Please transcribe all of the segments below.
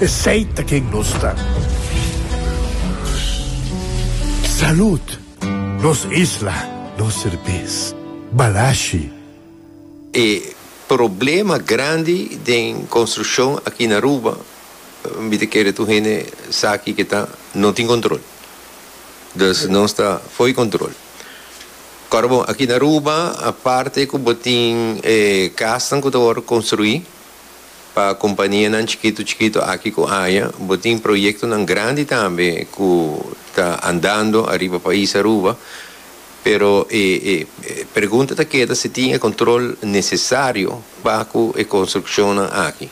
Esey ta ken nos ta. Salud! Nos isla, nos serbes. Balashi. E problema grandi den construccion aki na Aruba, mi ta kere tur hende sa aki ke ta, no tin control. Dus nos ta fo'i control. Ora bon, aki na Aruba, aparte ku bo tin e kasnan ku ta wòrdu construi, Pa companianan chikitu chikitu aki cu aya, bo tin proyectonan grandi tambe cu ta andando ariba pais Aruba, pero e pregunta ta keda si tin e control necesario pa cu e construccionnan aki.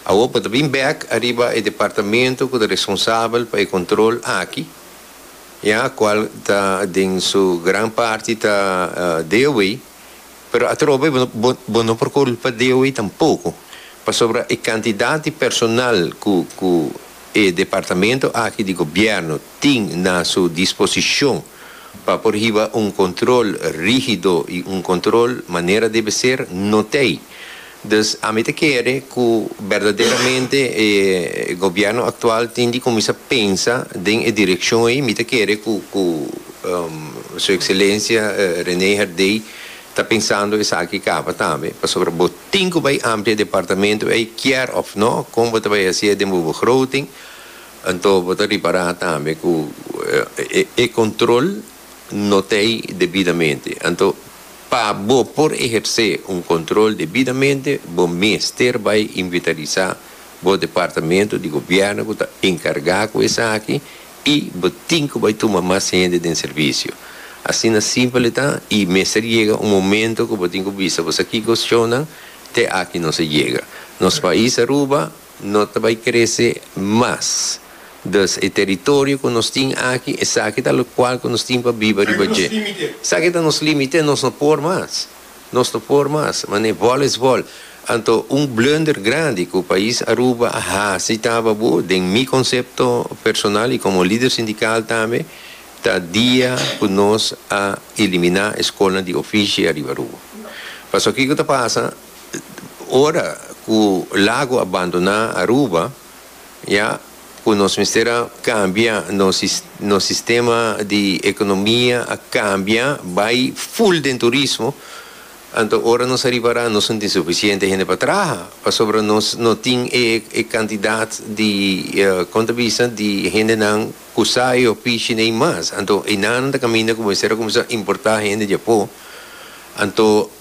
Awor bo ta bin bek ariba e departamento cu ta responsabel pa e control aki, ya, cual ta den su gran parti ta DOE, pero atrobe bo bo bo no por culpa di hui tampoco pasobra e cantidad di personal cu cu e departamento aki di gobierno tin na su disposicion pa por hiba un control rigido y un control manera debe ser no t'ey. Dus ami ta kere ku berdaderamente e gobièrnu aktual tin di kuminsá pensa den e direkshon ei. Mi ta kere ku ku Su Ekselensia René Herdé ta pensando esaki kaba tambe, pasobra bo tin ku bai amplia departamento ei kier òf nò, kon bo ta bai hasié den bo begroting, anto bo ta ripará tambe ku e kontrol. not'ei debidamente. Anto, pa bo por ehersé un control debidamente, bo mester bai inventarisá bo departamento di gobièrnu cu ta encargá cu esaki i bo tin cu bai tuma mas hende den servicio. Asina simpel e ta i mester yega un momento cu bo tin cu bisa boso kiko shownan te aki nos a yega. Nos pais Aruba No ta bai krese mas. Dus e teritorio ku nos tin aki, esaki ta lokual ku nos tin pa biba riba dje. Esaki ta nos límite, nos no por mas. Nos no por mas. Manera vòl es vòl. Anto un blunder grandi ku pais Aruba a hasi taba bo, den mi konsepto personal i komo lider sindikal tambe, ta dia ku nos a eliminá e skolnan di ofishi ariba Aruba. Pasobra kiko ta pasa? ora cu lago a bandona Aruba ya cu nos mester a cambia nos nos sistema di economia a cambia bay full den turismo anto ora nos a ripara nos no tin suficiente hende pa traha pasobra nos no tin e e cantidad di con ta bisa di hendenan cu sa e ofici ne y mas anto enanan ta caminda cu bo mester a cuminsa importa hende dje apo anto